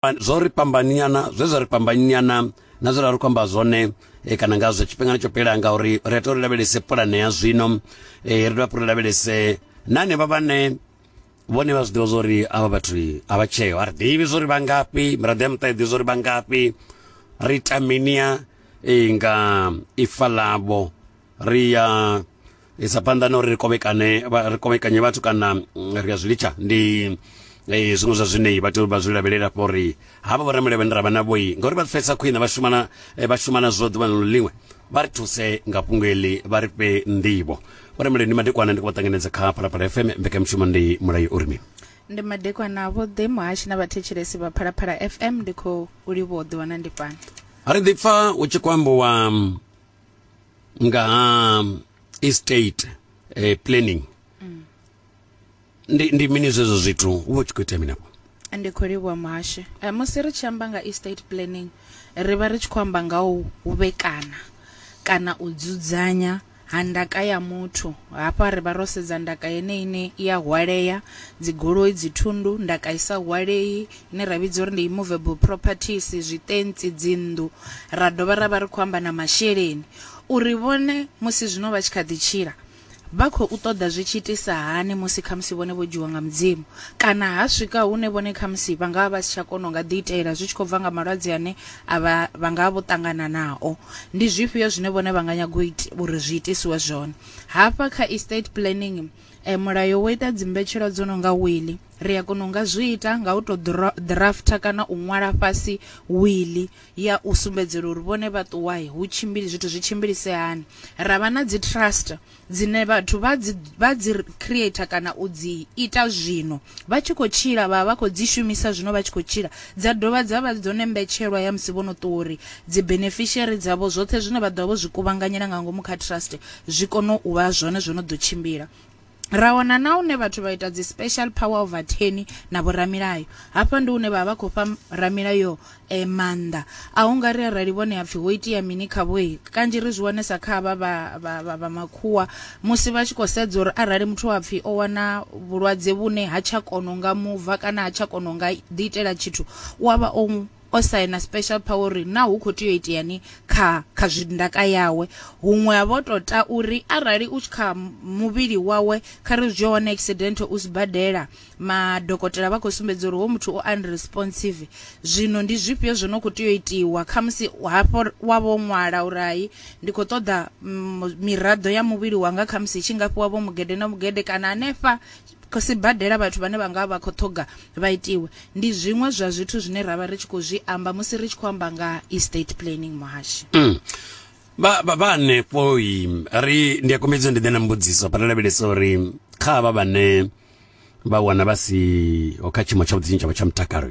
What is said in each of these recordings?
zwo ri fhambaniana zwe zwa ri fhambaniana na zwe ra ri khou amba zwone e, kana ngazwo tshifhingani tsho fhela ngauri ri a tou ri lavhelese pulane ya zwino e, ri dovha ri lavhelese na hanevha vhane vhone vha zwi ḓivha zwa uri avha vhathu a vha tsheo a ri ḓivhi zwa uri vha ngafhi miraḓo ya muṱa i ḓivhi zwa uri vha ngafhi ri ita minia e, nga ifa ḽavho ri ya isa phanḓa na uri ri kovhekane ri kovhekanye vhathu kana mm, ri ya zwi litsha ndi eh, zwiṅwe zwa zwine vha tea vha zwi lavhelela fha uri havha vhorameli vhane ra vha na vhoi ngauri vha pfesa khwine vha shumana eh, vha shumana zwo ḓuvha na ḽiṅwe vha ri thuse nga fhungo eḽi vha ri fhe nḓivho vhorameli ndi madekwana ndi khou vha ṱanganedza kha phalaphala fm mbekanyamushumo ndi mulayo uri mini ndi madekwana vhoḓe muhashi na vhathetshelesi vha phalaphala fm ndi khou livhuwa u ḓiwana ndi fhano ri ḓi pfa u tshi khou ambiwa mm, nga ha um, estate eh, planning mm. ndi, ndi mini zwezwo zwithu u vha u tshi khou itea minafho ndi khou livhuwa muhasho eh, musi ri tshi amba nga estate planning ri vha ri tshi khou amba nga u vhekana kana u dzudzanya ha ndaka ya muthu hafha ri vha ro sedza ndaka yeneyi ine i a hwalea dzigoloi dzithundu ndaka i sa hwalei ine ra vhidza uri ndi movable properties, zwitentsi, dzinnḓu, ra dovha ra vha ri khou amba na masheleni uri vhone musi zwino vha tshi kha ḓi tshila vha khou ṱoḓa zwi tshi itisa hani musi khamusi vhone vho dzhiwa nga Mudzimu kana ha swika hune vhone khamusi vha nga vha vha si tsha kona u nga ḓiitela zwi tshi khou bva nga malwadze ane a vha vha nga vha vho ṱangana nao. Ndi zwifhio zwine vhone vha nga nyaga u ita uri zwi itisiwe zwone. Hafha kha estate planning mulayo wo ita dzimbetshelwa dzo no nga wili. Ri a kona u nga zwi ita nga u tou ḓirafutha kana u ṅwala fhasi wiḽi ya u sumbedzela uri vhone vha ṱuwa hu tshimbili zwithu zwi tshimbilise hani. Ra vha na dzi trust dzine vhathu vha dzi vha dzi creator kana u dzi ita zwino vha tshi khou tshila vha vha khou dzi shumisa zwino vha tshi khou tshila dza dovha dza vha dzone mbetshelwa ya musi vho no ṱuwa uri dzi beneficiary dzavho zwoṱhe zwine vha ḓovha vho zwi kuvhanganyela nga ngomu kha trust zwi kone u vha zwone zwo no ḓo tshimbila. Ra wana na hune vhathu vha ita dzi special power of attorney na vhoramilayo. Hafha ndi hune vha vha khou fha ramilayo eh, maanḓa a hu nga ri arali vhone hapfi ho itea mini khavho he kanzhi ri zwi wanesa kha vha vha makhuwa musi vha tshi khou sedza uri arali muthu wa pfi o wana vhulwadze vhune ha tsha kono nga muva kana ha tsha kono nga ḓi itela tshithu u avha o o saina special power uri na hu kho tea u iteani kha kha zwi ndaka yawe huṅwe ha vho to ta uri arali u tshi kha muvhili wawe kha ri zwi hone accident u sibadela madokotela vha khou sumbedza uri ho muthu o unresponsive zwino ndi zwifhio zwo no kho tea u itiwa kha musi hafho wa vho ṅwala uri hai ndi kho ṱoḓa mm, miraḓo ya muvhili wanga kha musi tshi nga fhiwa vho mugede na mugede kana hanefha Sibadela vhathu vhane vha nga vha vha khou ṱhoga vha itiwe, ndi zwiṅwe zwa zwithu zwine ra vha ri tshi khou zwi amba musi ri tshi khou amba nga ha estate planning muhashi. Vha, vha, vha hanefho i ri ndi a kombedza ndi ḓe na mbudziso hafha ri lavhelesa uri kha havha vhane vha wana vha siho kha tshiimo tshavhuḓi tshine tshavha tsha mutakalo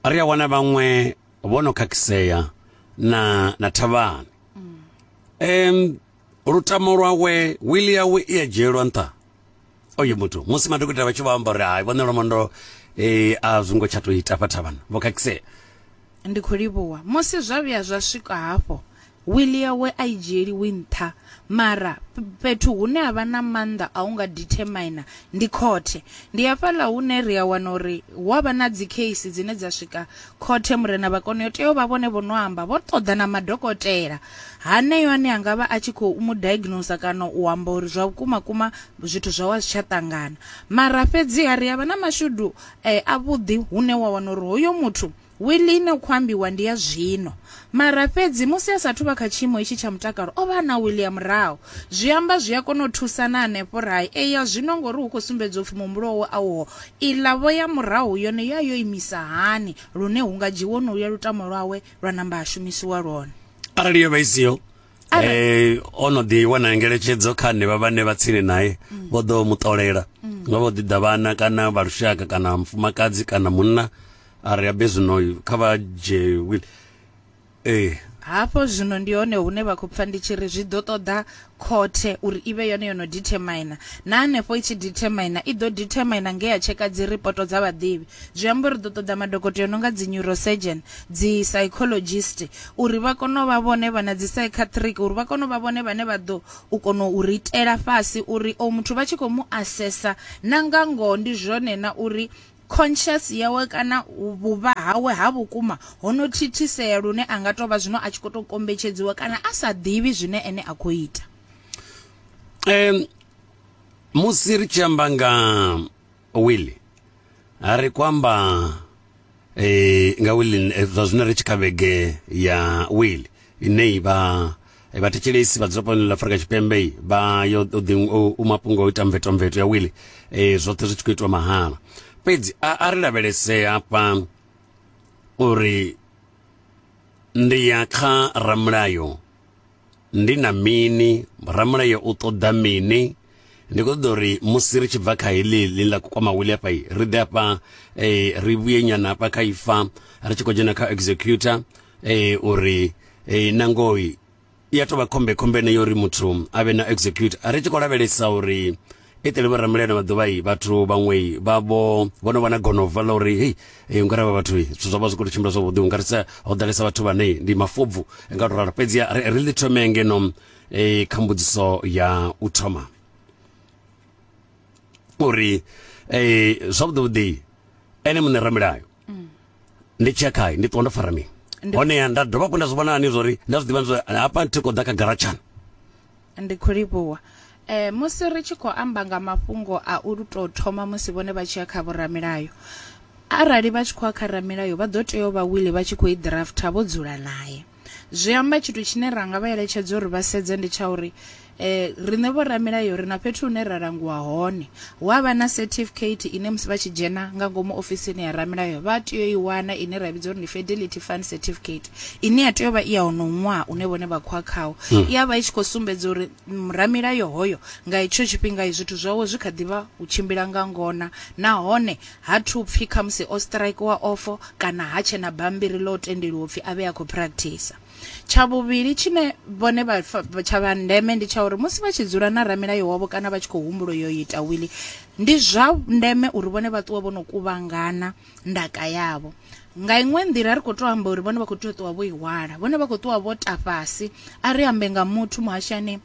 ri a wana vhaṅwe vho no khakhisea na na thavhani um lutamo lwawe wili yawe i a dzhielwa nṱha oyo muthu musi madokotela vha tshi vho amba uri hai vhone lwamondo um eh, a zwi ngo tsha tou ita fha thavhana vho khakhisea ndi khou livhuwa musi zwa vhuya zwa swika hafho wili yawe a i dzhieliwi nṱha mara fhethu hune ha vha na maanḓa a u nga determina ndi khothe ndi hafhaḽa hune ri a wana uri hu a vha na dzi case dzine dza swika Khothe, Murena Vhakoni yo tea u vha vhone vho no amba, vho ṱoḓa na madokotela haneyo ane a nga vha a tshi khou mu diagnoser kana u amba uri zwa vhukuma kuma zwithu zwawe a zwi tsha ṱangana. Mara fhedziha ri a vha na mashudu eh, avhuḓi hune wa wana uri hoyo muthu wili ine u khou ambiwa ndi ya zwino, Mara fhedzi musi a sa athu vha kha tshiimo itshi tsha mutakalo, o vha a na Willie murahu. Zwi amba zwi a kona u thusa na henefho ra i ea zwino ngauri hu khou sumbedzwa u pfi muhumbulo wawe a uho. Iḽa vho ya murahu yone yo ya yo imisa hani lune hu nga dzhiiwe honoluya lutamo lwawe lwa namba ha shumisiwa lwone? Arali yo vha i siho, Arali- eh, o no ḓi wana ngeletshedzo kha henevha vhane vha tsini nae Mm. vho ḓo mu ṱolela nga vho ḓi ḓa vhana kana vha lushaka kana mufumakadzi kana munna a ri abe zwino kha vha dzhie will ee hafho zwino ndi hone hune vha khou pfa ndi tshi ri zwi ḓo ṱoḓa khothe uri i vhe yone yo no determina na hanefho i tshi determina i ḓo determina nge ya tsheka dzi ripoto dza vhaḓivhi zwi amba uri ḓo ṱoḓa madokotela no nga dzi neurosurgeon dzi psychologist uri vha kone u vha vhone vha na dzi psychiatric uri vha kone u vha vhone vhane vha ḓo u kona u ritela fhasi uri o muthu vha tshi khou mu assessa na nga ngoho ndi zwone na uri Conscious yawe kana vhuvha hawe ha vhukuma ho no thithisea lune a nga tou vha zwino a tshi khou tou kombetshedziwa kana a sa ḓivhi zwine ene a khou ita. Um, musi ri tshi amba nga wili ri khou amba eh, nga wili eh, zwa zwino ri tshi kha vhege ya wili ine i vha Vhathetshelesi vhadzulaponi ḽa Afurika Tshipembe vha yo u mafhungo o ita mvetomveto ya wili e, zwoṱhe zwi tshi khou itiwa mahala fhedzi a, a ri lavhelese hafha uri ndi ya kha ramulayo ndi na mini ramulayo u ṱoḓa mini Ndi khou ṱoḓa uri musi ri tshi bva kha heḽi ḽi ḽa kukwama wili hafha ri ḓe hafha eh, ri vhuye nyana hafha kha ifa ri tshi khou dzhena kha executor eh, uri eh, nangoi ya tou vha khombe khombe ene uri muthu a vhe na execute ri tshi khou lavhelesa uri i ṱele vhoramuleno vha ḓuvha i vhathu vhaṅwe vha vho vho no vha na gonova ḽa uri hei hey, ungari vha vhathu zwithu zwa vha zwi khou tou tshimbila zwavhuḓi ungarisa ho ḓalesa vhathu vhane ndi mafobvu nga tou ralo fhedzi ri ḽi thome ngeno e kha mbudziso ya u thoma uri e zwavhuḓivhuḓi ene muṋe ramilayo mm. ndi tshi ya khae ndi ṱuwa ndo fara mini honeha nda dovha hafhu nda zwi vhona ani zwa uri nda zwi ḓivha zwa hafha thi khou ḓa kha garatshana ndi khou livhuwa Eh musi ri tshi khou amba nga mafhungo a u to thoma musi vhone vha tshi ya kha vhoramilayo arali vha tshi khou ya kha ramilayo vha ḓo tea u vha wili vha tshi khou i drafter vho dzula naye Zwi amba tshithu tshine ra nga vha eletshedza uri vha sedze ndi tsha uri eh riṋe vho ramilayo ri na fhethu hune ra langiwa hone hu avha na certificate ine musi vha tshi dzhena nga ngomu ofisini ya ramilayo vha tea u i wana ine ra vhidza uri ndi fidelity fund certificate ine ya tea u vha i ya honoho ṅwaha une vhone vha khoa khawo i ya vha i tshi khou sumbedza uri mm, ramilayo hoyo nga itsho tshifhinga i zwithu zwawe zwi kha ḓi vha u tshimbila nga ngona nahone Ha thu pfi khamusi o straikiwa ofo kana ha tshe na bammbiri ḽo tendeliwa u pfi a vhe a khou praktisa. Tsha vhuvhili tshine vhone vha tsha vha ndeme ndi tsha uri musi vha tshi dzula na ramilayo wavho kana vha tshi khou humbula u yo ita wili, ndi zwa ndeme uri vhone vha ṱuwe vho no kuvhangana ndaka yavho. Nga iṅwe nḓila a ri khou tou amba uri vhone vha khou tea u ṱuwa vho i hwala, vhone vha khou ṱuwa vho ta fhasi. A ri ambe nga muthu muhashani.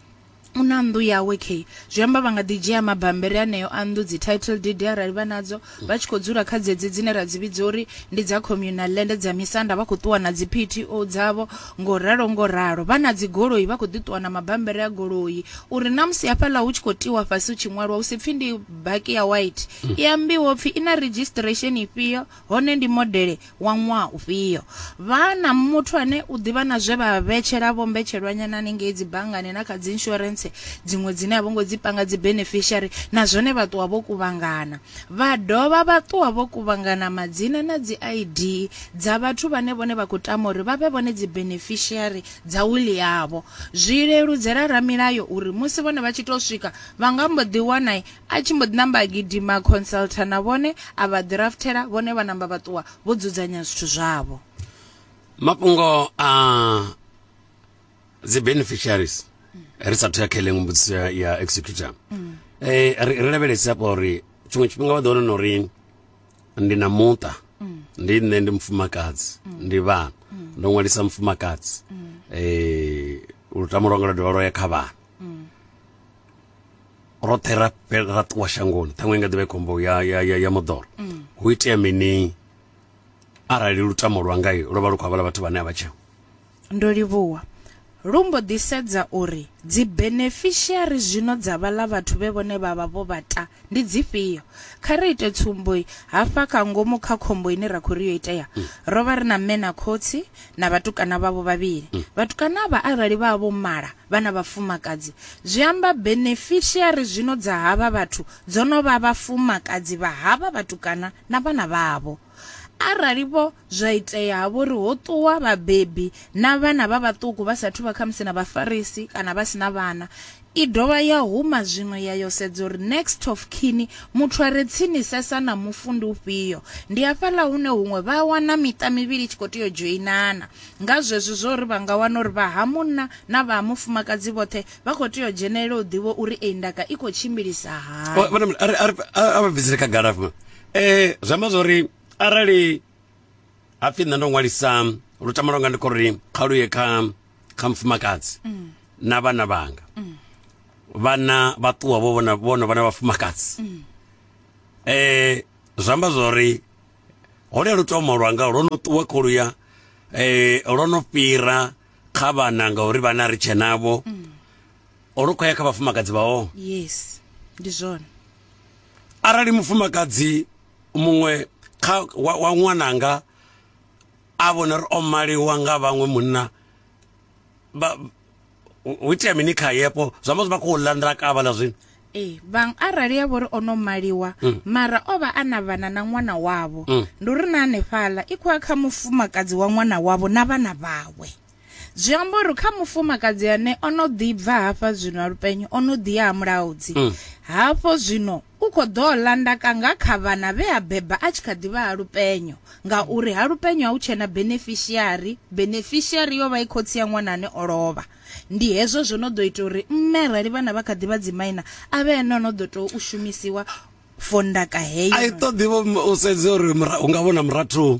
u na nnḓu yawe kheyi zwi amba vha nga ḓi dzhia mabambiri aneo a nnḓu dzi title deed arali vha nadzo vha tshi khou dzula kha dzedzi dzine ra dzi vhidza uri ndi dza communal land dza misanda vha khou ṱuwa na dzi PTO dzavho ngo ralo ngo ralo vha na dzi goloi vha khou ḓi ṱuwa na mabambiri a goloi uri na musi hafhaḽa hu tshi khou tiwa fhasi hu tshi ṅwalwa hu si pfhi ndi baki ya white i ambiwa upfhi i na registration ifhio Hone ndi modele wa ṅwaha ufhio? Vha na muthu ane u ḓivha na zwe vha vhetshela vho mbetshelwanyana hanengei dzibanngani na kha dziinsurentse dziṅwe dzine a vho ngo dzi panga dzi beneficiary na zwone vha ṱuwa vho kuvhangana. Vha dovha vha ṱuwa vho kuvhangana madzina na dzi ID dza vhathu vhane vhone vha khou tama uri vha vhe vhone dzi beneficiary dza wiḽi yavho. Zwi leludzela ramilayo uri musi vhone vha tshi tou swika vha nga mbo ḓi wana A tshi mbo ḓi namba a gidima, consultor na vhone a vha ḓirafuthela, vhone vha namba vha ṱuwa vho dzudzanya zwithu zwavho. Mafhungo a dzi beneficiaries ri sa thuya kha iḽe mbudziso ya, ya executor mm. eh, ri, ri lavhelesi hafha uri tshiṅwe tshifhinga vha ḓo wana uri ndi na muṱa mm. ndi nṋe ndi mufumakadzi mm. ndi vhana mm. ndo ṅwalisa mufumakadzi mm. eh, lutamo lwanga lwa dovha lwa ya kha vhana mm. roṱhe ra fhela ra ṱuwa shangoni ṱhaṅwe nga ḓivha khombo ya ya ya, ya moḓoro hu itea mini arali lutamo lwa ngai lwo vha lu khou havhala vhathu vhane a vha tsheo ndo livhuwa lu mbo ḓi sedza uri dzi beneficiary zwino dza vhala vhathu vhe vhone vha vha vho vhata ndi dzifhio kha ri ite tsumbo hafha kha ngomu kha khombo ine ra khou ri yo itea ro vha ri na mme na khotsi na vhatukana vhavho vhavhili. Mm. Vhatukana avha arali vha vho mala vha na vhafumakadzi, zwi amba beneficiary zwino dza havha vhathu dzo no vha vhafumakadzi vha havha vhatukana na vhana vhavho. Arali vho zwa itea ha vho ri ho ṱuwa vhabebi na vhana vha vhaṱuku vha sathu vha khamusi na vhafarisi kana vha si na vhana, I dovha ya huma zwiṅwe ya yo sedza uri next of kin, muthu a re tsinisesa na mufu ndi ufhio. Ndi hafhaḽa hune huṅwe vha a wana miṱa mivhili i tshi khou tea u dzhoinana. Nga zwezwi zwa uri vha nga wana uri vha ha munna na vha ha mufumakadzi vhoṱhe vha khou tea u dzhenelela u ḓivha uri eyi ndaka i khou tshimbilisa hani. Vhona mini, a ri a ri a vha bvisele khagala afha. Eh zwi amba zwori arali hapfi nṋe ndo ṅwalisa lutamo lwanga ndi khou ri kha lu ye kha kha mufumakadzi mm. na vhana vhanga mm. vhana vha ṱuwa vho vhona vhono vhana vhafumakadzi mm. eh zwi amba zwori hone lu tomo lwanga lwo no ṱuwa khou luya eh lwo no fhira kha vhana ngauri vhana ri tshe navho mm. lu khou ya kha vhafumakadzi vhao yes ndi zwone arali mufumakadzi muṅwe kha wa, wa ṅwananga a vhona uri o maliwa nga vhaṅwe munna vha hu itea mini khaye afho zwi amba zwi vha khou ḽa nḓila kavha ḽa zwino ee vhaṅwe arali ya vhori o no maliwa mm. mara o vha a na vhana na ṅwana wavho mm. ndi uri na hanefhaḽa i khou ya kha mufumakadzi wa ṅwana wavho na vhana vhawe zwi amba uri kha mufumakadzi ane o no ḓi bva hafha zwino a lupenyo o no ḓi ya ha mulaudzi mm. hafho zwino u khou ḓo landaka nga kha vhana vhe a beba a tshi kha ḓivha ha lupenyo ngauri ha lupenyo ha u tshena beneficiary beneficiary yo vha i khotsi ya ṅwana ane o lovha ndi hezwo zwo no ḓo ita uri mme arali vhana vha kha ḓivha dzimaina a vhe ene o no ḓo tou u shumisiwa fondaka heyo a i ṱoḓi u sedza uri u nga vhona murathu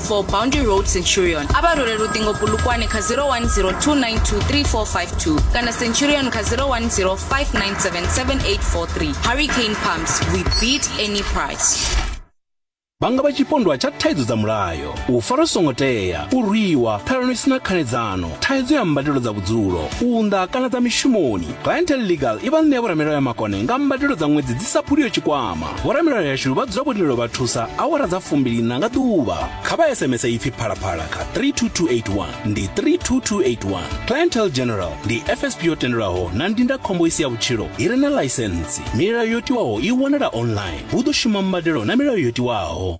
for Boundary Road Centurion a vha role luṱingo pulukwani kha 0102923452 kana Centurion kha 0105977843 Hurricane Pumps we beat any price vhanga vha tshipondwa tsha thaidzo dza mulayo u fara songo tea u rwiwa ṱhalano isina khanedzano thaidzo ya mbadelo dza vhudzulo unḓa kana dza mishumoni clientel legal i vha ṋea vhoramilayo ya makone nga mbadelo dza ṅwedzi dzi sa phuliyo tshikwama vhoramilayo yashu vha dzula vho lindela u vha thusa awara dza fumbiliṋa nga ḓuvha kha vha sms ipfi phalaphala kha 32281 ndi 32281 clientel general ndi fsp yo tendelwaho na ndindakhombo i si ya vhutshilo i re na ḽaisentsi milayo yo tiwaho i wanala online hu ḓo shuma mbadelo na milayo yo tiwaho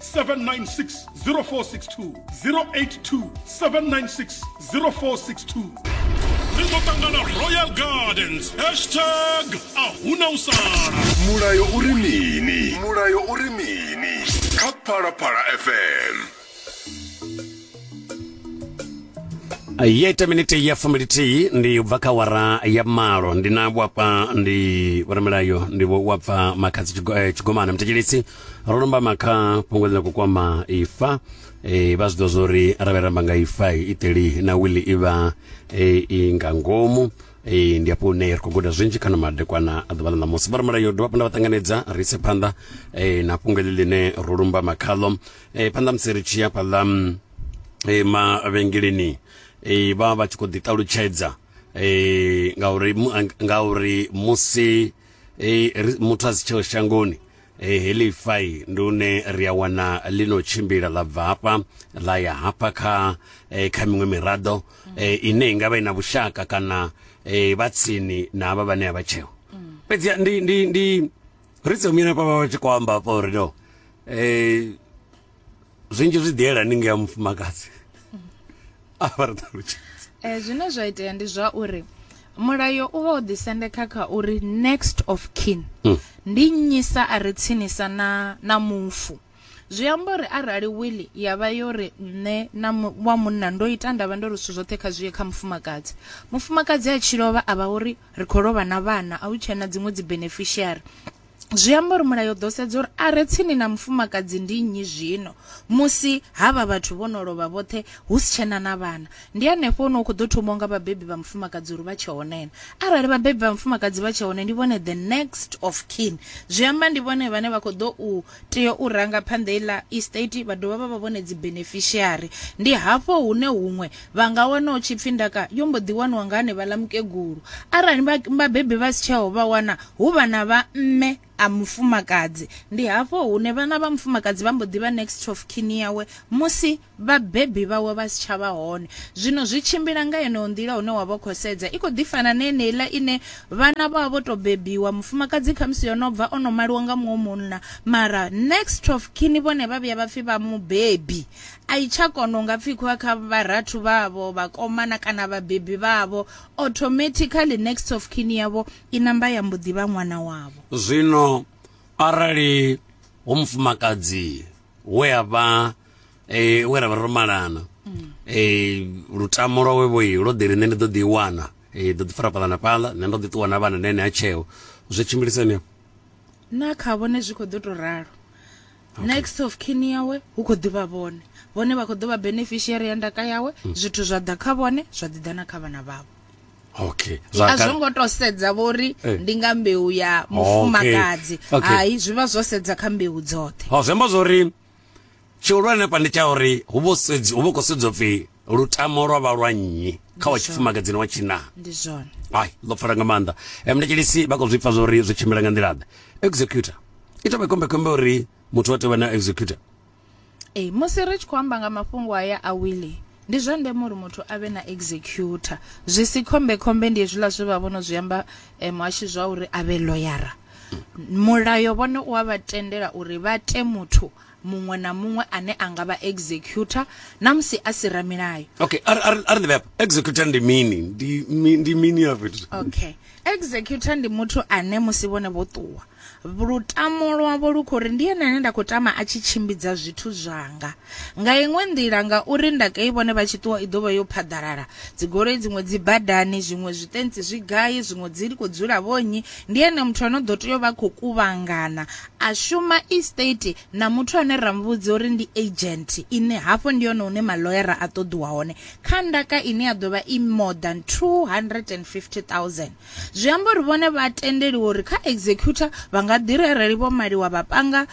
796 0462 082 796 0462 ri ḓo ṱangana royal gardens hashtag a huna u sala mulayo uri mini mulayo uri mini kha phalaphala fm ya ita minete ya fumbilithihi ndi ubva kha wara ya malo ndi na wapfa ndi vhoramilayo ndi wapfa makhadzi eh, tshigomana mutetshelisi ro nombama kha fhungo ḽine khou kwama ifa e, vha zwi ḓo zwo ri arali ramba nga ifa iteli na wili i vha e, i nga ngomu e, ndi hafho hune ri khou guda zwinzhi kana madekwana a ḓuvha ḽa ṋamusi vhoramulayo dovha phanḓa vha ṱanganedza ri ise phanḓa e, na fhungo ḽi ḽine ro lumbama khaḽo e, phanḓa musi ri tshi ya fhaḽa e, mavhengeleni e, vha vha tshi khou ḓi ṱalutshedza e, ngauri ngauri musi e, muthu a si tsheo shangoni E, heḽi fai ndi une ri a wana ḽi no tshimbila ḽa bva hafha ḽa ya hafha kha e, kha miṅwe miraḓo e, ine i nga vha i na vhushaka kana e, vha tsini na avha vhane a vha tsheo fhedzi ndi ndi ndi ri tsomina pa vha tshi khou amba hafha uri no e, zwinzhi zwi ḓi yelani nga mufumakadzi a vha ri ṱalutshedza eh zwine zwa itea ndi zwa uri mulayo u vha u ḓisendeka kha uri next of kin mm. ndi nnyisa a re tsinisa na na mufu zwi amba uri arali wili ya vha yo ri nṋe na wa munna ndo ita ndavha ndo ri zwithu zwoṱhe kha zwi ye kha mufumakadzi mufumakadzi a tshi lovha a vha uri ri khou lovha na vhana a hu tshena dziṅwe dzi beneficiary Zwi amba uri mulayo ḓo sedza uri a re tsini na mufumakadzi ndi nnyi zwino musi havha vhathu vho no lovha vhoṱhe hu si tshena na vhana ndi hanefho hune hu khou ḓo thomiwa nga vhabebi vha mufumakadzi uri vha tshe hone na arali vhabebi vha mufumakadzi vha tshe hone ndi vhone the next of kin zwi amba ndi vhone vhane vha khou ḓo u tea u ranga phanḓa iḽa estate vha dovha vha vha vhone dzi beneficiary ndi hafho hune huṅwe Vha nga wana u tshi pfi ndaka yo mbo ḓi waniwa nga hanevhaḽa mukegulu. Arali vhabebi vha si tsheho vha wana hu vhana vha mme a mufumakadzi. Ndi hafho hune vhana vha mufumakadzi vha mbo ḓi vha next of kin yawe musi vhabebi vhawe vha si tsha vha hone. Zwino zwi tshimbila nga yeneyo nḓila hune wa vha khou sedza i khou ḓi fana na yeneiḽa ine vhana vha vha vho tou bebiwa mufumakadzi khamusi yo no bva o no maliwa nga muṅwe munna mara next of kin vhone vha vhuya vha pfhi vha mubebi A i tsha kona u nga pfikwa kha vharathu vhavho, vhakomana kana vhabebi vhavho. Automatically next of kin yavho i namba ya mbo ḓi vha ṅwana wavho. Zwino arali hu mufumakadzi we a vha e, we ra vha ro malana mm. e, lutamo lwawe vho lwo ḓi ri nṋe ndi ḓo ḓi wana e, ḓo ḓi fara fhaḽa na fhaḽa nṋe ndo ḓi ṱuwa na vhana na ene ha tsheo zwi tshimbilisani na kha vhone zwi khou ḓo tou ralo Okay. next of kin yawe hu khou ḓivha vhone vhone vha khou ḓo vha beneficiary ya ndaka yawe mm. zwithu zwa ḓa kha vhone zwa ḓi ḓa na kha vhana vhavho okay a zwo ngo to sedza vhori eh. ndi nga mbeu ya mufumakadzi hai zwi vha zwo sedza kha mbeu dzoṱhe ho zemba zwori tshihulwane pa ndi tsha uri hu vho sedzi hu vho khou sedzwa pfi lutamo lwa vha lwa nnyi kha wa tshifumakadzini wa tshina ndi zwone ai ḽo pfala nga maanḓa mndetshelisi vha khou zwi pfa zwori zwi tshimbila nga nḓila ḓe executor i tovha khombekhombe uri muthu wa tea u vha na executor ee musi ri tshi khou amba nga mafhungo aya a wili ndi zwa ndeme uri muthu a vhe na executor zwi si khombekhombe ndi hezwiḽa zwe vha vhono zwi amba eh, muhashi zwa uri a vhe loyara mulayo vhone u a vha tendela uri vha te muthu muṅwe na muṅwe ane a nga vha executor na musi a si ramilayo okay a ri ḓivhe hafha executor ndi mini ndi mini ya fhethu okay executor ndi muthu ane musi vhone vho ṱuwa lutamo lwavho lu khou ri ndi ene ane nda khou tama a tshi tshimbidza zwithu zwanga nga iṅwe nḓila ngauri ndaka i vhone vha tshi ṱuwa i ḓo vha yo phaḓalala dzigoloi dziṅwe dzi badani zwiṅwe zwitentsi zwi gai zwiṅwe dzi khou dzula vhonyi ndi ene muthu ano ḓo tea u vha khou kuvhangana A shuma e state na muthu ane ra mu vhudza uri ndi agent ine hafho ndi hone hune maḽoyara a ṱoḓiwa hone kha ndaka ine ya ḓo vha i more than 250000. Zwi amba uri vhone vha a tendeliwa uri kha executor vha nga ḓi ri arali Vho Maliwa vha panga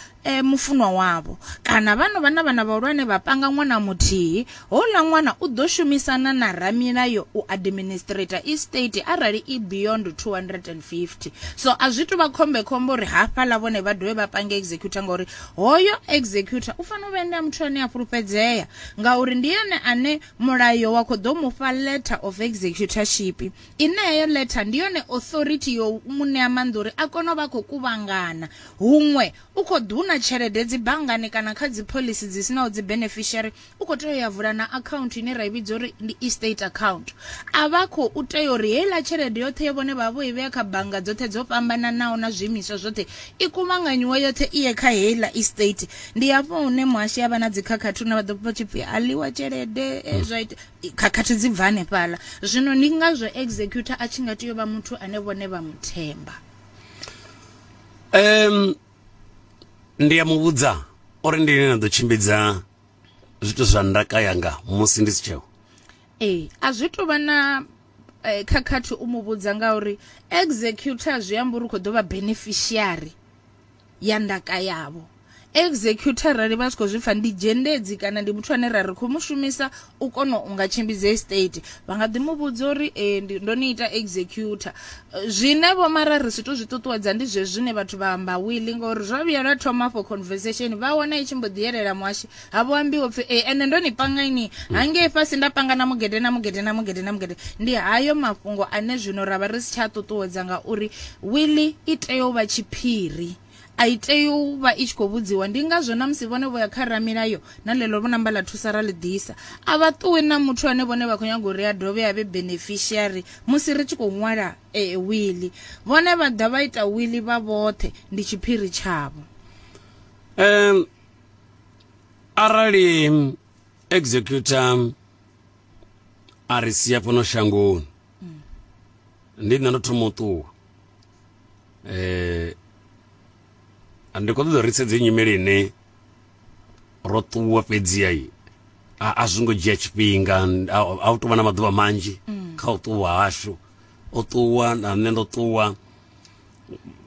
mufunwa wavho kana vha no vha na vhana vhahulwane vha panga ṅwana muthihi Houḽa ṅwana u ḓo shumisana na ramilayo u administrator estate arali i beyond 250. So a zwi tou vha khombekhombe uri hafhaḽa vhone vha dovhe vha pange executor ngauri hoyo executor u fanela u vha ene a muthu ane a fhulufhedzea ngauri ndi ene ane mulayo wa khou ḓo mu fha letter of executorship ine heyo letter ndi yone authority yo mu ṋea maanḓa uri a kone u vha a khou kuvhangana huṅwe u khou ḓuna tshelede dzi banngani kana kha dzi phoḽisi dzi sinaho dzi beneficiary u khou tea u ya vula na account ine ra i vhidza uri ndi estate account a vha khou tea uri heiḽa tshelede yoṱhe yo vhone vha vho i vhea kha bannga dzoṱhe dzo fhambananaho na zwiimiswa zwoṱhe i kuvhanganyiwe yoṱhe i ye kha heiḽa estate ndi hafho hune muhashi avha na dzikhakhathi hune vha ḓo pfa tshipfi a ḽiwa tshelede eh, hmm. zwa ita khakhathi dzi bva hanefhaḽa zwino ndi ngazwo executor a tshi nga tea u vha muthu ane vhone vha muthemba um ndi ya muvhudza uri ndi ine na ḓo tshimbidza zwithu zwa ndaka yanga musi ndi si tsheo ee a zwi tou vha na eh, khakhathi u mu vhudza ngauri executor zwi amba uri u khou ḓo vha beneficiary ya ndaka yavho executor rali vha si khou zwi pfa ndi dzhendedzi kana ndi muthu ane ra ri khou mu shumisa u kona u nga tshimbidza estate vha nga ḓi mu vhudza uri ee eh, ndo ni ita executor eh, zwine vho mara ri si to zwi ṱuṱuwedza ndi zwe zwine vhathu vha amba wili ngori zwa vhuya lwa thoma for conversation vha wana i tshi mbo ḓi yelela muhashi ha vho ambiwa pfhi ee eh, ende ndo ni panga ini hangei fhasi nda panga na mugede na mugede na mugede na mugede ndi hayo mafhungo ane zwino ra vha ri si tsha ṱuṱuwedza ngauri wili i tea u vha tshiphiri A i tei u vha i tshi khou vhudziwa. Ndi ngazwo na musi vhone vho ya kha ramilayo na ḽeḽo vho namba ḽa thusa ra ḽi ḓisa. A vha ṱuwi na muthu ane vhone vha khou nyaga uri a dovhe a vhe beneficiary musi ri tshi khou ṅwala wiḽi. Vhone vha ḓa vha ita wiḽi vha vhoṱhe, ndi tshiphiri tshavho. Um, arali executor a ri sia fhano shangoni. mm. ndi nṋe ndo thoma u ṱuwa eh ndi khou ṱoḓa ri sedze nyimele ine ro ṱuwa fhedziha i a zwi ngo dzhia tshifhinga a u tovha na maḓuvha manzhi mm. kha u ṱuwa hashu o ṱuwa na nṋe ndo ṱuwa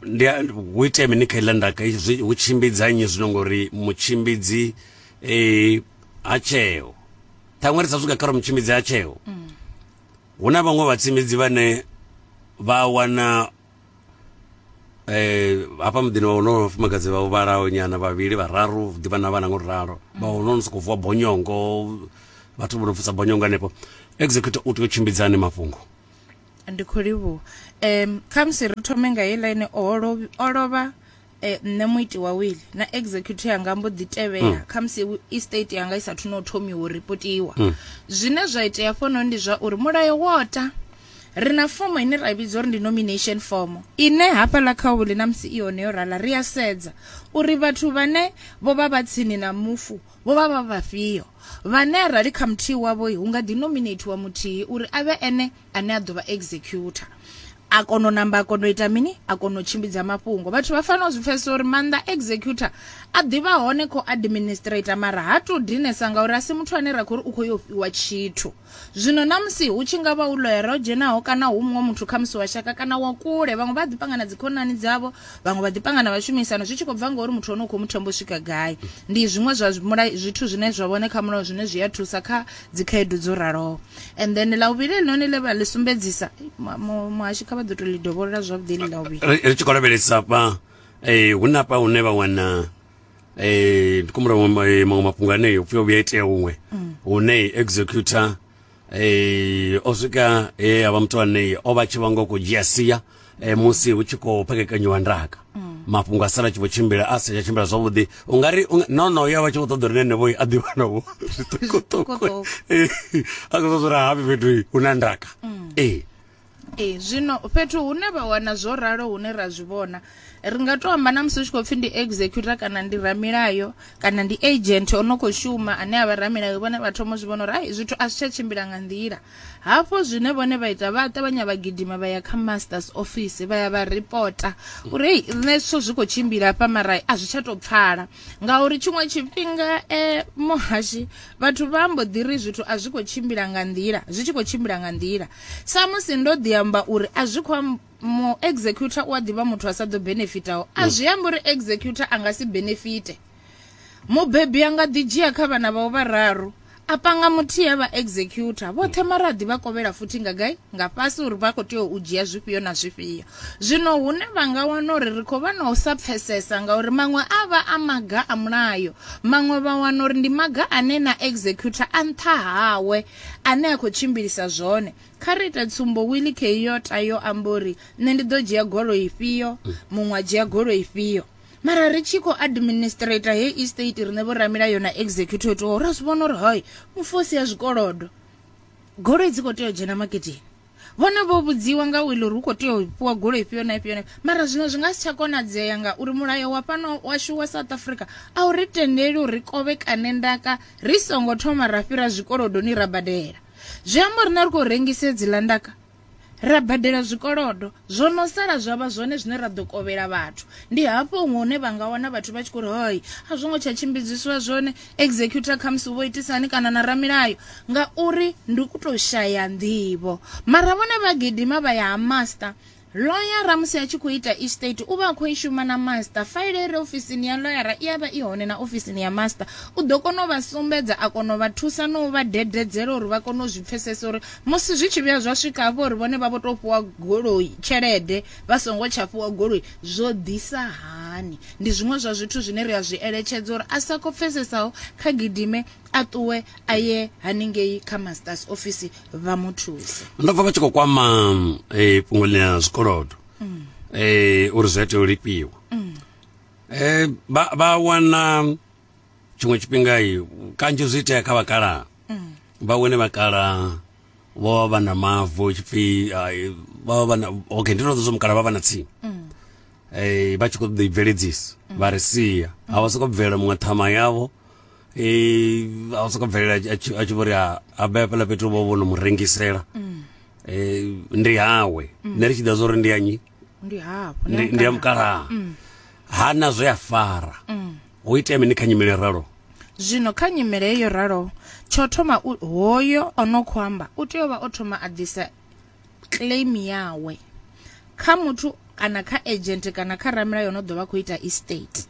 ndi hu itea mini kha iḽa ndaka hu tshimbidza nnyi zwino ngori mutshimbidzi um ha tsheo ṱhaṅwe ri sa swika kha ro mutshimbidzi ha tsheo mm. hu na vhaṅwe vhatshimbidzi vhane vha wana eh hafha muḓini wa wonoyo vhafumakadzi vha vhalaho nyana vhavhili vhararu hu ḓivha na vhana ngo ralo vha wonono sokou vuwa bonyongo vhathu vho no pfusa bonyongo hanefho executor u tea u tshimbidza hani mafhungo ndi khou livhuwa um khamusi ri thome nga heiḽa ine o lovha o lovha e, nṋe muiti wa wili na executor yanga mbo ḓi tevhela mm. khamusi estate yanga i sathu no thomiwa u ripotiwa mm. zwine zwa itea fhono ndi zwa uri mulayo wota ri na fomo ine ra vhidza uri ndi nomination fomo ine hafhaḽa kha wili na musi i hone yo rala ri a sedza uri vhathu vhane vho vha vha tsini na mufu vho vha vha vhafhio vhane arali kha muthihi wavho hu nga ḓi nominatiwa muthihi uri a vhe ene ane a ḓo vha executor a kona u namba a kona u ita mini a kona u tshimbidza mafhungo vhathu vha fanela u zwi pfesesa uri maanḓa executor a ḓivha hone kho administrator mara ha to dinesa ngauri a si muthu ane ra khou uri u khou yo fhiwa tshithu zwino na musi hu tshi nga vha u loyera o dzhenaho kana hu muṅwe muthu kha musi wa shaka kana wa kule vhaṅwe vha ḓi panga na dzikhonani dzavho vhaṅwe vha ḓi panga na vhashumisano zwi tshi khou bva ngauri muthu hone u khou muthemba u swika gai ndi zwiṅwe zwa zwithu zwine zwa vhone kha mulayo zwine zwi a thusa kha dzikhaedu dzo raloho and then la uvhili elinoni le vha ḽi sumbedzisa muhashi kha vha ḓo to ḽi dovholola zwavhuḓi ḽi la uvhili ri tshi khou lavhelesa fha um eh, hu na fha hune vha wana um eh, ndi kumbula maṅwe eh, mafhungo anei upfi o vhuya itea huṅwe mm. hune executor um o swika he a vha muthu anei o vha tshi vha ngo khou dzhia sia e, musi hu tshi khou phakekanyiwa ndaka mm. mafhungo a sala tshi vho tshimbila a sa tsha tshimbila zwavhuḓi u nga ri no no ya vha tshi khou ṱoḓa uri nenevho a ḓiwanavho zwiṱukuṱuku a khou ṱoḓa uri hafi fhethu hu na ndaka mm. ee ee zwino fhethu hune vha wana zwo ralo hune ra zwi vhona ri nga to amba na musi u tshi khou pfhi ndi executor kana ndi ramilayo kana ndi agent o no khou shuma ane a vha ramilayo vhone vha thoma zwi vhona uri ai zwithu a zwi tsha tshimbila nga nḓila Hafho zwine vhone vha ita vha ṱavhanya vha gidima vha ya kha masters office vha ya vha ripota uri hei nṋe zwithu zwi khou tshimbila hafha mara a zwi tsha tou pfala ngauri tshiṅwe tshifhinga um muhashi vhathu vha mbo ḓi ri zwithu a zwi khou tshimbila nga nḓila zwi tshi khou tshimbila nga nḓila samusi ndo ḓi amba uri a zwi khou mu executor u a ḓivha muthu a sa ḓo benefitaho a zwi amba uri executor a nga si benefite Mubebi a nga ḓi dzhia kha vhana vhawe vhararu a panga muthihi a vha executor vhoṱhe mara a ḓi vha kovhela futhi nga gai nga fhasi uri vha khou tea u dzhia zwifhio na zwifhio zwino hune vha nga wana uri ri khou vha na u sa pfesesa ngauri maṅwe a vha a maga a mulayo maṅwe vha wana uri ndi maga ane na executor a nṱha hawe ane a khou tshimbilisa zwone kha ri ite tsumbo willi keyota yo amba uri nṋe ndi ḓo dzhia golo ifhio muṅwe a dzhia golo ifhio mara ri tshi khou administrator hei estate riṋe vhoramilayo na executive to ra zwi vhona uri hoi mufosi ya zwikolodo goloi dzi khou tea u dzhena maketeni vhone vho vhudziwa nga wili uri hu khou tea u fhiwa goloi ifhio na ifhio mara zwino zwi nga si tsha konadzea ngauri mulayo wa fhano washu wa south africa a u ri tendeli uri ri kovhekane ndaka ri songo thoma ra fhira zwikolodoni ra badela zwi amba uri na ri khou rengise dziḽa ndaka ra badela zwikolodo zwo no sala zwa vha zwone zwine ra ḓo kovhela vhathu ndi hafho huṅwe hune vha nga wana vhathu vha tshi khou ri hoi a zwo ngo tsha tshimbidziswa zwone executor khamusi vho itisani kana na ramilayo ngauri ndi ku tou shaya nḓivho mara vhone vha gidima vha ya ha master loyara musi a tshi khou ita estate u vha a khou i shuma na master faile i re ofisini ya loyara i a vha i hone na ofisini ya master u ḓo kona u vha sumbedza a kona u vha thusa na u vha dededzela uri vha kone u zwi pfhesesa uri Musi zwi tshi vhuya zwa swika hafho uri vhone vha vho tou fhiwa goloi, tshelede, vha songo tsha fhiwa goloi, zwo ḓisa hani? Ndi zwiṅwe zwa zwithu zwine ri a zwi eletshedza uri a sa khou pfesesaho kha gidime a ṱuwe a ye haningei kha masters office vha mu thuse. Ndo pfa vha tshi khou kwama eh, fhungo ḽa zwikolodo mm. eh, uri zwi a tea u lifhiwa mm. eh, vha wana tshiṅwe tshifhinga kanzhi zwi itea kha vhakalaha mm. vha wene vhakalaha vho vha vha na mavu tshipfi vha vha na okay ndi ndo zwo mukala vha vha na tsimu mm. eh vha tshi kho ḓi bveledzisa mm. vha ri sia ha vha soko bvela muṅwe thama yavho eh a vha soko bvelela a tshi vhori a bebe la fhethu vho vho no mu rengisela eh ndi hawe ne ri tshi ḓa zwo ri ndi anyi ndi hafho ndi ndi ya mukalaha Mm. ha na zwe a fara Mm. hu itea mini kha nyimele ralo zwino kha nyimele heyo ralo tsho thoma u- hoyo o no khou amba u tea u vha o thoma a ḓisa claim yawe kha muthu kana kha agent kana kha ramulayo no ḓo vha khou ita estate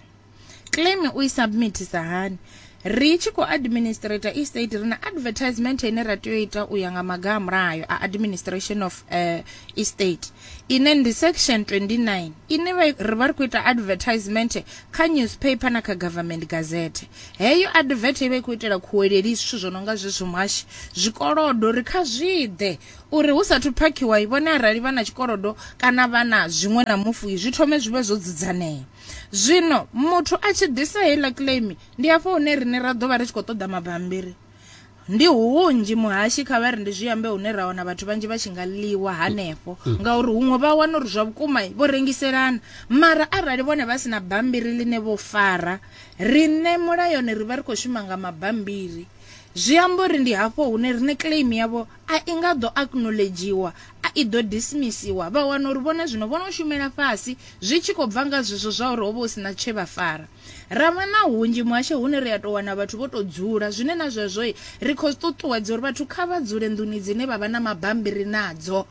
Claim u i submithisa hani? Ri tshi khou administrator estate ri na advertisement ine ra tea u ita u ya nga maga a mulayo a administration of uh, estate ine ndi section 29 ine ri vha ri khou ita advertisement kha newspaper na kha government gazette heyo advert i vha i khou itela khuweleli zwithu zwo no nga zwezwo mwashi zwikolodo ri kha zwiḓe uri hu sathu phakhiwa i vhone arali vha na tshikolodo kana vha na zwiṅwe na mufuwi zwi thome zwi vhe zwo dzudzanea zwino muthu a tshi ḓisa heiḽa claim ndi afho hune riṋe ra ḓo vha ri tshi khou ṱoḓa mabambiri ndi hunzhi muhashi kha vha ri ndi zwi ambe hune ra wana vhathu vhanzhi vha tshi nga ḽiwa hanefho mm. ngauri huṅwe vha wana uri zwa vhukuma vho rengiselana mara arali vhone vha si na bambiri ḽine vho fara riṋe mulayoni ri vha ri khou shuma nga mabambiri zwi amba uri ndi hafho hune riṋe claim yavho A i nga ḓo acknowledgiwa, a i ḓo dismissiwa. Vha wana uri vhone zwino vho no shumela fhasi, zwi tshi khou bva nga zwezwo zwa uri ho vha hu si na tshe vha fara. Ra vha na hunzhi muhasho hune ri a tou wana vhathu vho tou dzula, zwine na zwezwo ri khou ṱuṱuwedza uri vhathu kha vha dzule nḓuni dzine vha vha na mabambiri nadzo.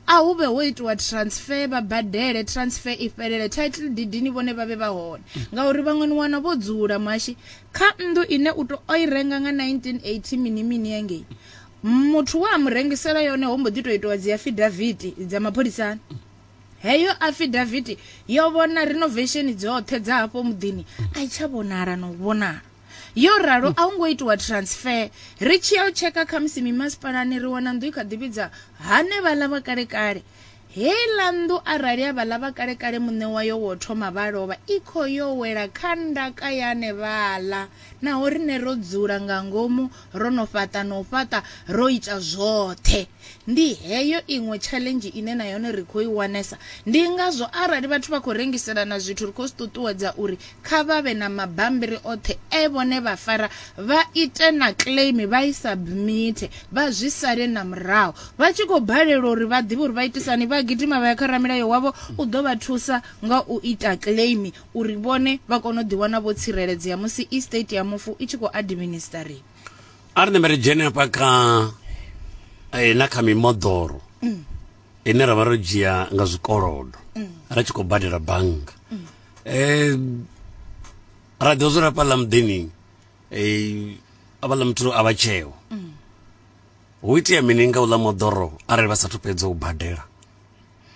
A hu vhe ho itiwa transfer vha badele transfer i fhelele title deed ni vhone vha vhe vha hone ngauri vhaṅwe ni wana vho dzula muhashi kha nnḓu ine u to o i renga nga 1980 mini mini engei muthu wa a mu rengisela yone ho mbo ḓi to itiwa dzi afidaviti dza mapholisani heyo afidaviti yo vhona renovation dzoṱhe dza hafho muḓini a i tsha vhonala na u vhonala yo ralo a hu ngo itiwa transfer ri tshi ya u tsheka khamusi mimasipalani ri wana nnḓu i kha ḓi vhidza hanevhaḽa vha kalekale heiḽa nnḓu arali a vhaḽa vha kalekale muṋe wayo wo thoma vha lovha i khou yo wela kha ndaka ya anevhaḽa naho rine ro dzula nga ngomu Ro no fhaṱa na u fhaṱa, ro ita zwoṱhe. Ndi heyo iṅwe tshaḽenzhi ine na yone ri khou i wanesa. Ndi ngazwo arali vhathu vha khou rengiselana zwithu ri khou zwi ṱuṱuwedza uri kha vha vhe na mabambiri oṱhe e vhone vha fara, vha ite na claim vha i submite, vha zwi sale na murahu. Vha tshi khou balelwa uri vha ḓivhe uri vha itisa hani, vha gidima vha ya kha ramilayo wavho, u ḓo vha thusa nga u ita claim. uri vhone vha kone u ḓiwana vho tsireledzea musi estate ya mufu i tshi khou administariwa a ri ṋembe ri dzhene hafha kha eh, na kha mimoḓoro mm. ine ra vha ro dzhia nga zwikolodo mm. ra tshi khou badela bannga mm. eh, ra ḓo dzula hafha ḽa muḓini eh, avha ḽa muthu a vha tsheo hu itea mini nga u ḽa moḓoro arali vha sathu fhedza u badela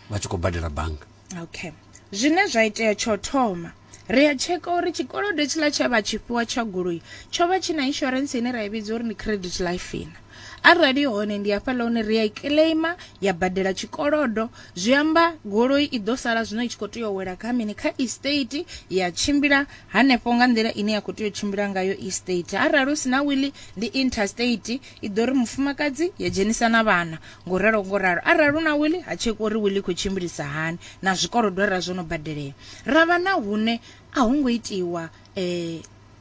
vha tshi khou badela bannga okay zwine zwa itea tsho thoma ri a tsheka uri tshikolodo tshiḽa tshe vha tshifhiwa tsha goloi tsho vha tshi na insurance ine ra i vhidza uri ndi credit life ina arali hone ndi hafhaḽa hune ri a i claima ya badela tshikolodo zwi amba goloi i ḓo sala zwino i tshi khou tea u wela kha mini kha estate ya tshimbila hanefho nga nḓila ine ya khou tea u tshimbila ngayo estate arali hu si na wili ndi interstate i ḓo ri mufumakadzi ya dzhenisa na vhana Ngo ralo ngo ralo, arali hu na wili, ha tshekwi uri wili i khou tshimbilisa hani na zwikolodo arali zwo no badelea. Ra vha na hune a ho ngo itiwa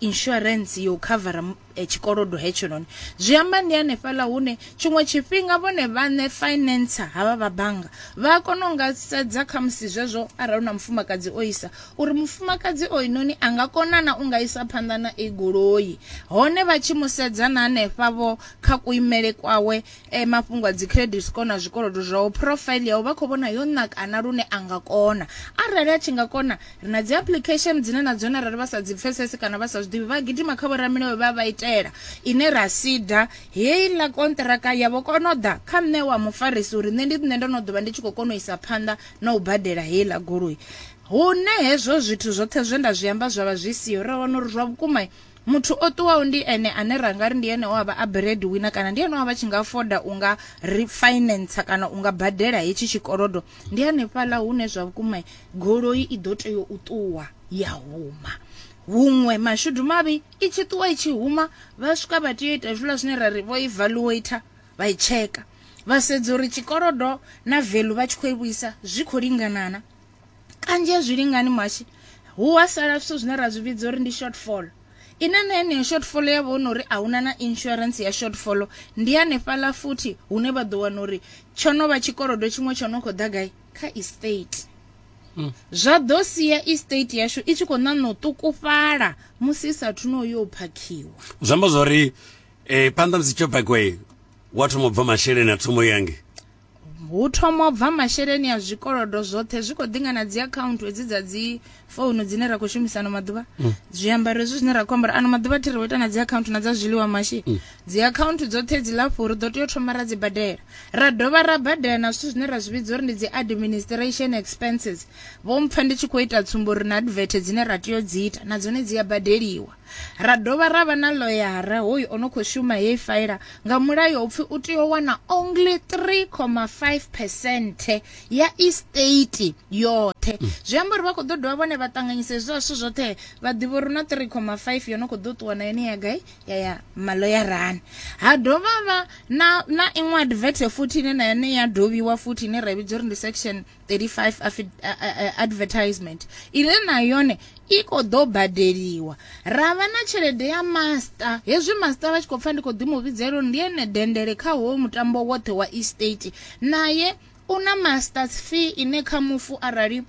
insurance ya u khavara tshikolodo hetshinoni. Zwi amba ndi hanefhaḽa hune tshiṅwe tshifhinga vhone vhaṋe financer havha vha bannga vha a kona u nga sedza kha musi zwezwo arali hu na mufumakadzi o isa uri mufumakadzi o inoni a nga kona na u nga isa phanḓa na i goloi hone vha tshi mu sedza na hanefha vho kha kuimele kwawe e mafhungo a dzi credit score na zwikolodo zwawo profile yawo vha khou vhona yo nakana lune a nga kona arali a tshi nga kona ri na dzi application dzine na dzone arali vha sa dzi pfesesi kana vha sa zwi ḓivhi vha gidima kha vhoramilayo vha vha itela ine ra sida heiḽa kontraka ya vho kona u ḓa kha nṋe wa mufarisi uri nṋe ndi nṋe ndo no ḓo vha ndi tshi khou kona u isa phanḓa na u badela heiḽa goloi hune hezwo zwithu zwoṱhe zwe nda zwi amba zwa vha zwi siho ra wana uri zwa vhukuma Muthu o ṱuwaho ndi ene ane ra nga ri ndi ene o a vha a bread winner kana ndi ene o a vha tshi nga foda u nga ri finance kana u nga badela hetshi tshikolodo ndi hanefhaḽa hune zwa vhukuma goloi i ḓo tea u ṱuwa ya huma huṅwe mashudu mavhi i tshi ṱuwa i tshi huma vha swika vha tea u ita zwiḽa zwine ra ri vho evaluator vha i tsheka vha sedza uri tshikolodo na value vha tshi khou i vhuisa zwi khou linganana kanzhi a zwi lingani mashi hu wa sala zwithu zwine ra zwi vhidza uri ndi shortfall ine na yeneyo shortfall ya vha uri a huna na insurance ya shortfall ndi hanefhaḽa futhi hune vha ḓo wana uri tsho no vha tshikolodo tshiṅwe tsho no khou ḓa gai kha estate hmm. zwa ḓo sia estate yashu i tshi khou ṋaṋa u ṱukufhala musi i sathu no yo phakhiwa zwi amba zwori um eh, phanḓa musi tsho phakiwa wa thoma u bva masheleni a thomo yange hu thoma u bva masheleni a zwikolodo zwoṱhe zwi khou ḓinga na dzi akhaunthu hedzi dza dzi founu dzine ra khou shumisa ano maḓuvha mm. zwiambaro hezwi zwine ra khou ambara ano maḓuvha thi ri wo ita na dzi akhaunthu na dza zwiḽiwa mashi mm. dzi akhaunthu dzoṱhe dzi lafho ri ḓo tea u thoma ra dzi badela ra dovha ra badela na zwithu zwine ra zwi vhidza uri ndi dzi administration expenses vho mpfa ndi tshi khou ita tsumbo uri na advert dzine ra tea u dzi ita na dzone dzi a badeliwa Ra dovha ra vha na ḽoyara hoyu o no khou shuma heyi faela nga mulayo upfi u tea u wana only 3,5 percent ya estate yoṱhe mm. zwi amba uri vha khou ḓo dovha vhone vha ṱanganyisa hezwi zwithu zwoṱhe vha ḓivha uri na 3,5 yo no khou ḓo ṱuwa na yone ya gai ya ya maloyarani ha dovha vha na na iṅwe advert futhi ine na yone ya dovhiwa futhi ine ra vhidza uri ndi section 35 advertisement ine na yone i khou ḓo badeliwa ra vha na tshelede ya master hezwi master vha tshi khou pfa ndi khou ḓi mu vhidzela uri ndi ene dendele kha howo mutambo woṱhe wa estate naye u na masters fee ine kha mufu arali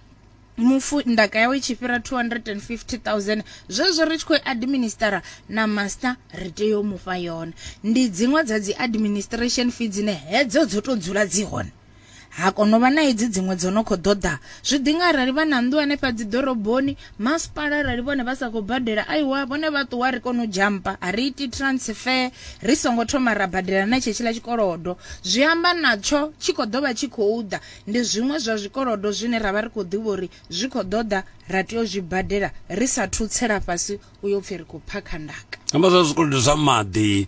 mufu ndaka yawe i tshi fhira 250000 zwezwo ri tshi khou administera na master ri tea u mufha yone ndi dziṅwe dza dzi administration fee dzine hedzo dzo to dzula dzi hone ha kono vha na hedzi dziṅwe dzo no khou ḓoḓa zwi ḓi nga arali vha na nnḓu hanefha dzi ḓoroboni masipala arali vhone vha sa khou badela aiwa vhone vha ṱuwa ri kone u jampa a ri iti transfer ri songo thoma ra badela na tshetshiḽa tshikolodo zwi amba natsho tshi khou ḓo vha tshi khou ḓa ndi zwiṅwe zwa zwikolodo zwine ra vha ri khou ḓivha uri zwi khou ḓoḓa ra tea u zwi badela ri sa thutsela fhasi u yo pfhi ri khou phakha ndaka amba zwa zwikolodo zwa maḓi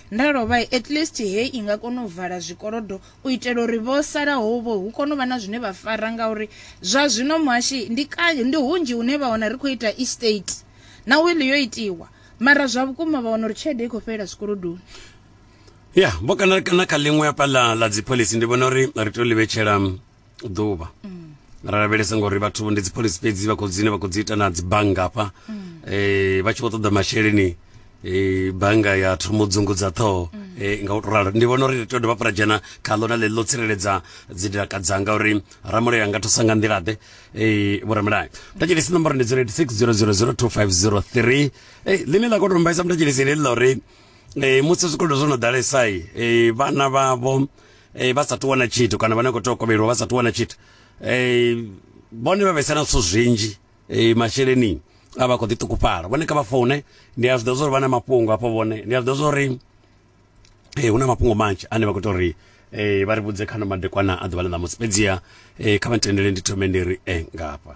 Nda lovha, at least hei i nga kona u vala zwikolodo u itela uri vho salaho vho hu kone u vha na zwine vha fara ngauri zwa zwino muhashi ndi kanzhi ndi hunzhi hune vha wana ri khou ita estate na will yo itiwa mara zwa vhukuma vha wana uri tshelede i khou fhelela zwikolodoni. Ya, vho kana kana kha ḽiṅwe hafha ḽa ḽa dzi phoḽisi ndi vhona uri ri tea u ḽi vhetshela ḓuvha mm. ra lavhelesa ngori vhathu ndi dzipholisi fhedzi vha khou dzine vha khou dzi ita na dzibannga hafha mm. eh, vha tshi vho ṱoḓa masheleni eh, bannga ya thoma u dzungudza ṱhoho mm. eh, nga u to ralo ndi vhona uri ri tea u dovha fhura dzhena kha ḽo na ḽe ḽo tsireledza dzidaka dzanga uri ramulayo anga thusa nga nḓilaḓe eh, vhoramulayo mutachelesi nomboro ndi 086 000 2503 eh, ḽine ḽa khou tombaisa mutachelesi ḽi ḽa uri eh, musi zwikolodo zwo no ḓalesai eh, vhana vhavho eh, vha sa ṱuwa na tshithu kana vhane khou tea u kovheliwa vha sa ṱuwa na tshithu eh, vhone vha vhesana zwithu zwinzhi eh, masheleni a vha khou ḓi ṱukufhala vhone kha vha foune ndi a zwiḓivha zwa uri vha na mafhungo hafho vhone ndi a zwiḓivha zwa uri eh, hu na mafhungo manzhi ane vha khou ita uri eh, vha ri vhudze khano madekwana a ḓuvha ḽa ṋamusi fhedziha eh, kha vha ntendele ndi thome ndi ri eh, ngafha